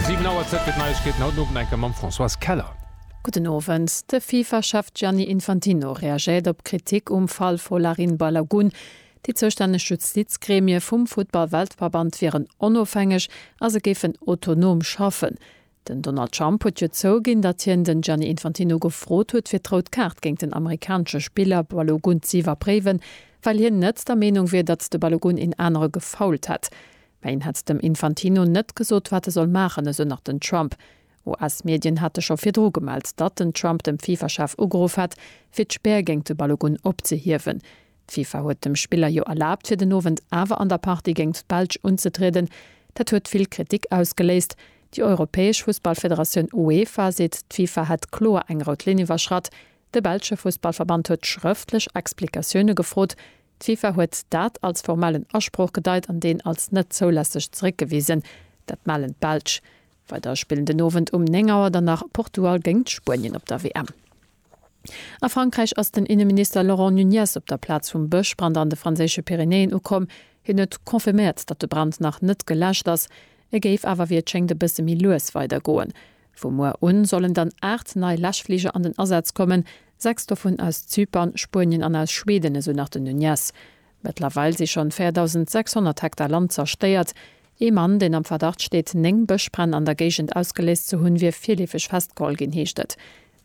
Siwen Auer Zäit fir d'Neiegkeeten, haut den Owend eng Kéier mam Françoise Keller. Gudden Owend. De FIFA-Chef Gianni Infantino reagéiert op Kritik um Fall Folarin Balogun. Déi zoustänneg Justizgremie vum Futtball-Weltverband wieren onofhängeg a se géifen autonom schaffen. Den Donald Trump huet jo zouginn, datt hien den Gianni Infantino gefrot huet fir d'Rout Kaart géint den amerikanesche Spiller Balogun z'iwwerpréiwen, well hien net der Meenung wier, datt de Balogun een anere gefoult hätt. Mä een hätt dem Infantino net gesot, wat e soll maachen, esou nach den Trump. US-Medien hate scho virdru gemellt, datt den Trump dem FIFA-Chef ugeruff hätt, fir d'Spär géint de Balogun opzehiewen. D'Fifa huet dem Spiller jo erlaabt fir den Owend awer an der Partie géingt d'Belsch unzetrieden. Dat huet vill Kritik ausgeléist. Déi europäesch Fussballfederatioun UEFA seet d'Fifa hätt kloer eng rout Linn iwwerschratt. De belsche Fussballverband huet schrëftlech Explikatioune gefrot. D'Fifa huet dat als formellen Asproch gedeit an deen als net zoulässeg zeréckgewisen. Dat mellen d'Belsch weider. Spillen den Owend um 9 Auer dann nach Portugal géingt Spuenien op der WM. A Frankräich ass den Inneminister Laurent Nunez op der Plaz vum Bëschbrand an de franséische Pyrenäen ukomm. Hien huet confirméiert, datt de Brand nach net geläscht ass. E géif awer, wéi et schéngt, e bësse méi lues weidergoen. Vu muer un sollen dann 8 nei Läschfliger an den Asaz kommen, 6 dovun aus Zypern, Spuenien an aus Schweden, esou nach den Nunez. Mëttlerweil si schonn 4.600 Hektar Land zerstéiert. Ee Mann, deen am Verdacht steet, 9 Bëschbränn an der Géigend ausgeléist ze hunn, wier virleefeg festgeholl ginn, heescht et.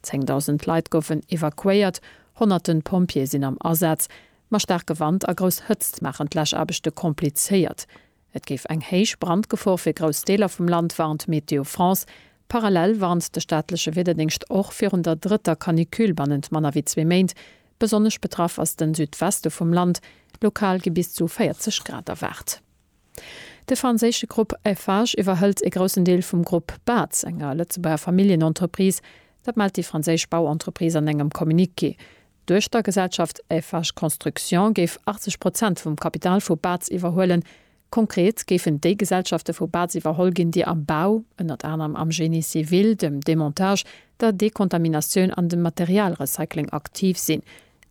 10.000 Leit goufen evakuéiert, honnerte Pompjeeë sinn am Asaz. Ma staarke Wand a grouss Hëtzt maachen d'Läschaarbechte komplizéiert. Et géif eng héich Brandgefor fir grouss Deeler vum Land, warnt Météo France. Parallel warnt de staatleche Wiederdéngscht och virun der drëtter Canicule bannent manner wéi zwee Méint. Besonnesch betraff ass de Südweste vum Land, lokal gi bis zu 40 Grad erwaart. De franséische Grupp Eiffage iwwerhëlt e groussen Deel vum Grupp Baz, enger Lëtzebuerger Familljenentreprise. Dat mellt déi franséisch Bauentreprise an engem Communiqué. D'Duechtergesellschaft Eiffage Construction géif 80 Prozent vum Kapital vu Baz iwwerhuelen. Konkret géifen déi Gesellschafte vu Baz iwwerholl ginn, déi am Bau, ënnert anerem am Génie civil, dem Demontage, der Dekontaminatioun an dem Materialrecycling aktiv sinn.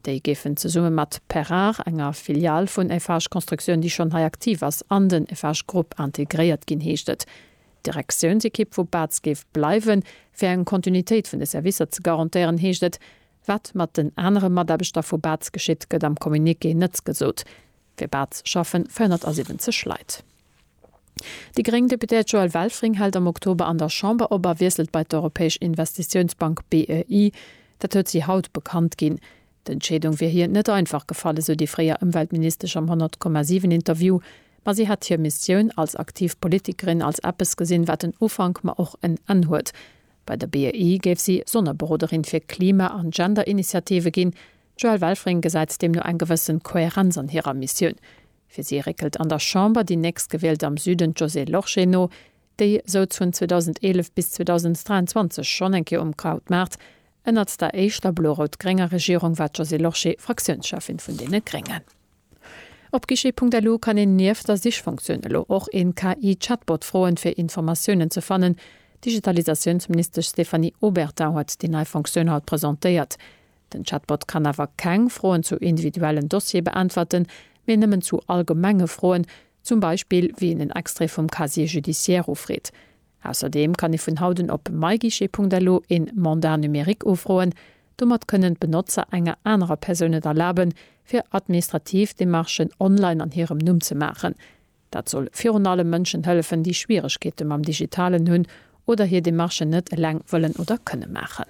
Déi géifen zesumme mat Perrard, enger Filial vun Eiffage Construction, déi schonn hei aktiv ass, an den Eiffage Group integréiert ginn, heescht et. D'Direktiounsekipp vu Baz géif bleiwen, fir eng Kontinuitéit vun de Servicer ze garantéieren, heescht et. Wat mat den anere Mataarbechter vu Baz geschitt, gëtt am Communiqué net gesot. Fir Baz schaffen 470 Leit. Déi gréng Deputéiert Joëlle Welfring hält am Oktober an der Chamber op a wiesselt bei d'Europäesch Investitiounsbank, BEI. Dat huet si haut bekannt ginn. D'Entscheedung wier hir net einfach gefall, esou déi fréier Ëmweltministesch am 100,7 Interview. Ma si hätt hir Missioun als aktiv Politikerin als eppes gesinn, wat en Ufank, ma och en Enn huet. Bei der BEI géif si Sonnerberoderin fir Klima an Gender-Initiative ginn. D'Joëlle Welfring gesäit deemno eng gewëssen Kohärenz an hirer Missioun. Fir si réckelt an der Chamber déi Nächstgewielt am Süden, d'Josée Lorsché, no, déi souz vun 2011 bis 2023 schonn eng Kéier um Krautmaart. Ënnert der éischter blo-rout-grénger Regierung war d'Josée Lorsché Fraktiounscheffin vun deene Gréngen. Op guichet.lu kann een nieft der Sichfunktioun elo och een KI-Chatbot froen, fir Informatiounen ze fannen. D'Digitalisatiounsministesch Stéphanie Obertin huet déi nei Funktioun haut presentéiert. Den Chatbot kann awer keng Froen zu individuellen Dossiere beäntwerten, mee nëmmen zu allgemenge Froen, zum Beispill wéi een en Extrait vum Casier judiciaire ufreet. Ausserdeem kann ee vun haut un op myguichet.lu een Mandat numérique ufroen. Domat kënnen d'Benotzer enger anerer Persoun et erlaben, fir administrativ Demarchen online an hirem Numm ze maachen. Dat soll virun allem Mënschen hëllefen, déi Schwieregkeete mam Digitalen hunn oder hir Demarchen net eleng wëllen oder kënne maachen.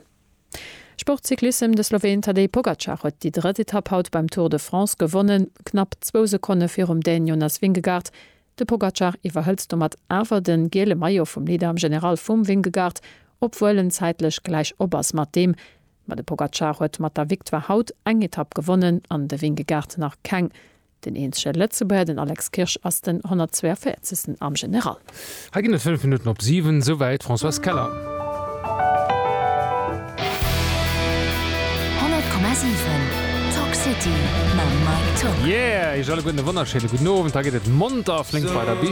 Sport, Cyclissem, De Sloween Tadej Pogacar huet déi drëtt Etapp haut beim Tour de France gewonnen, knapp zwou Sekonne virum Dän Jonas Vingegaard. De Pogacar iwwerhëlt domat awer de giele Maillot vum Leader am General vum Vingegaard, obwuel en zäitlech gläich op ass mat deem. Ma de Pogacar huet mat der Victoire haut eng Etapp gewonnen an de Vingegaard nach keng. Den eenzege Lëtzebuerger, den Alex Kirsch, ass den 142. am General. Hei ginn et 5 Minutten op 7, esouwäit d'Françoise Keller. Yeah, iech alleguerten e wonnerschéine gudden Owend. Hei geet et monter a flénk weider bis.